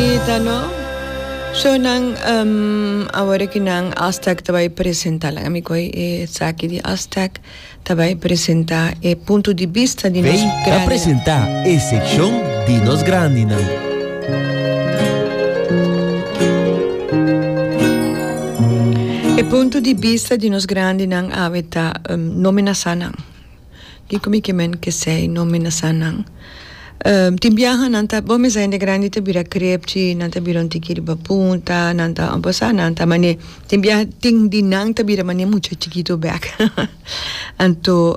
Bonita no? So nan awor cu nan Aztec ta bay presenta laga mi coge e esaki di Aztec ta bay presenta e punto di bista di nos grandinan. Bay ta presenta e seccion di nos grandinan. E punto di bista di nos grandinan awe ta no mi na sa nan. Di cu mi ke men kesey no menasa nan. Tin biaha nan ta bon mesa hende grandi ta bira krepchi nan ta bira un tiki riba punta nan ta obosa nan ta mane tin biaha tin di nan ta bira mane mucha chikitu bek anto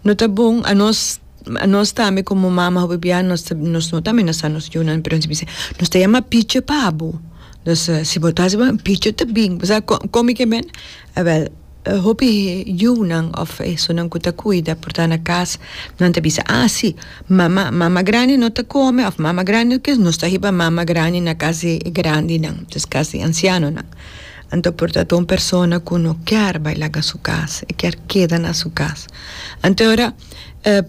no ta bon anos anos tambe como mama hopi bia nos ta nos no ta amenasa nos yunan pero nos bisa nos ta yama pichi pa bo nos si bo ta hasi bo pichi ta bin bo sa con con mi ke men awel. Hopi yunan of esunnan ku ta kuida por ta na kas nan ta bisa a si mama mama grandi no ta kome of mama grandi no kere nos ta hiba mama grandi na kas di grandinan des kas di ansianonan anto por ta un persona ku no ker bai laga su kas e ker keda na su kas anto ora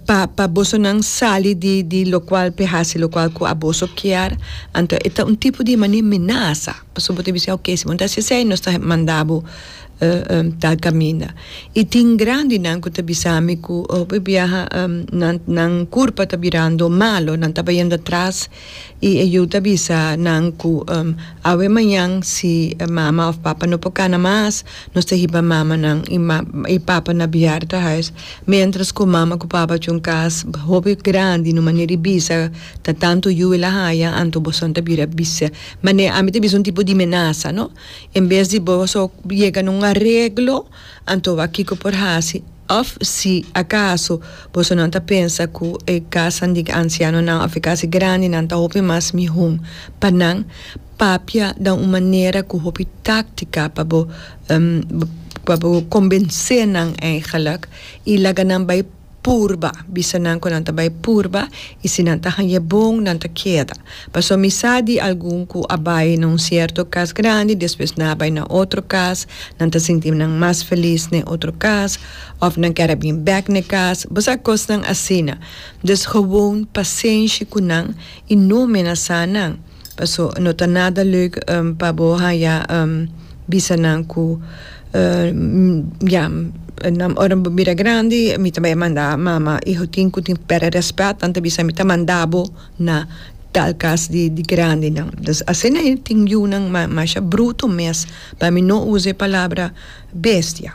pa pa boso nan sali di di lokual por hasi lokual ku boso kier anto e ta un tipo di mane menasa pasobra bo ta bisa oke si bo ta hasi esei nos ta manda bo. ta caminda. Y tin grandinan cu ta bisami cu hopi biaha nan curpa ta birando malo, nan ta bayendo atras y e yu ta bisa nan cu awe mañan si mama of papa no por cana mas, nos ta hiba mamanan y papanan na biaha ta huis, mientras cu mama cu papa cu un cas hopi grandi na manera di bisa ta tanto yu y la haya, anto boso ta bira bisa, mane ami ta bisa un tipo di menaza. En bes di bo so yega na un areglo, anto wak kiko por hasi? Òf si akaso boso nan ta pensa ku e kasanan di ansianonan òf e kas di grandinan ta hopi mas mihó pa nan, papia dan un manera ku hopi táktika pa bo pa bo kombensé nan eigenlik i laga nan bai. Purba, bisa nan cu nan ta bay purba y si nan ta hanje bon nan ta keda. Paso mi sa di algun cu a bay na un cierto cas grandi despues nan a bay na otro cas, nan ta sinti nan mas feliz na e otro cas of nan kier a bin bek na e cas, bo sa cosnan asina. Dus gewoon pacienshi cu nan y no menasa nan. Paso no ta nada leuk pa bo haya bisa nan ku ya ora bo bira grandi mi ta bay manda mama iho tin ku tin perde respet nan ta bisa mi ta manda bo na tal kas di grandi nan dus asina e tin yu nan masha bruto mes pa mi no usa e palabra bestia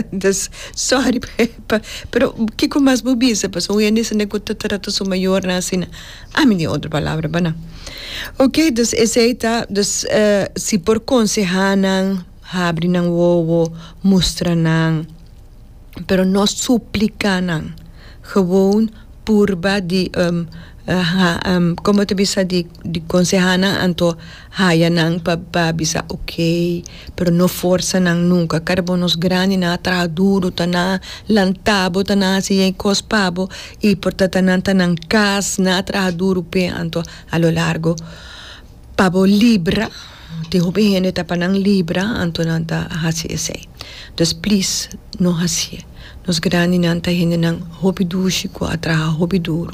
dus sorry pero kiko mas bo bisa paso hoy en dia sende ku ta trata su mayornan asina. A mi tin otro palabra bana. Ok, dus esey ta, dus si por konsehá nan, habri nan wowo, mustra nan, pero no supliká nan, gewoon purba di, komo ta bisa di konsehá nan anto. Haya nan pa pa bisa ok, pero no forsa nan nunka. Kara bo nos grandi nan a traha duru, ta nan lanta bo, ta nan hasi e kos pa bo i por tata nan ta nan kas, nan a traha duru p'e. Anto a lo largo pa bo libra, tin hopi hende ta pa nan libra, anto nan ta hasi esei. Dus plis no hasi'e. Nos grandi nan ta hendenan hopi dushi ku a traha hopi duru.